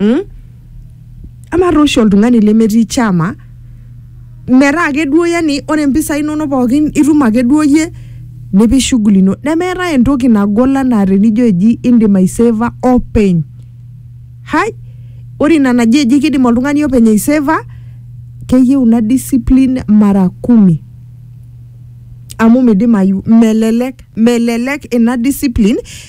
mm? amaa taa oshi oltung'ani lemetii chama metaa ake duo yani ore impisai inonok pookin itum ake duo yie nipik shughuli ino nemeetae entoki nagol anaa tenijo eji indim aiseva openy hai ore ina naji eji kidim oltung'ani openy aiseva keyieu ina discipline mara kumi amu midimayu melelek melelek ina discipline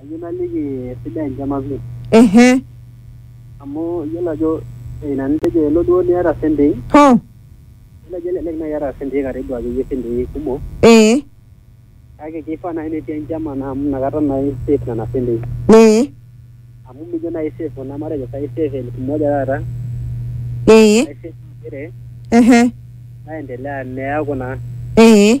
Ayieu naliki esidai enchama pii. Ehe. Amu iyiolo ajo ina nitejo elo duo niata sentei. Hoo. Iyiolo ajo elelek naai iyata sentei karibu akeyie sentei kumok. Ee. Kake kifaa naai netii enchama naa amu inakata naa i save nena sentei. Ee. Amu mijo naai i save kuna matejo sai i save elfu moja taata. Ee. Nai save inchile. Ehe. Naendelea neeku naa. Ee.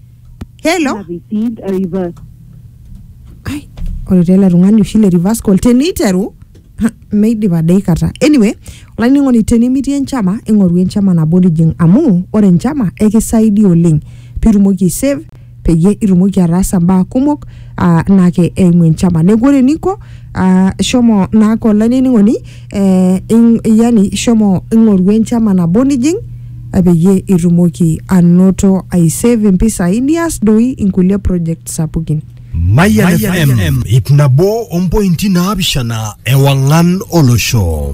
hello Ai, ore taa ele tung'ani oshi le reverse call teniteru ha, meidip adaikata anyway olainining'oni tenimitii enchama ing'oru enchama nabo nijing amu ore enchama ekisaidia oleng pitumoki aisave peyie itumoki ataasa mbaa kumok ah, naake eimu enchama neeku ore eninko ah, shomo naake olainining'oni eh, ing, yani ishomo ing'oru enchama nabo nijing eh, peyie itumoki anoto aisave impisai nias doi inkulie project sapukin Mayan FM, ip nabo ompointi naapishana ewang'an olosho.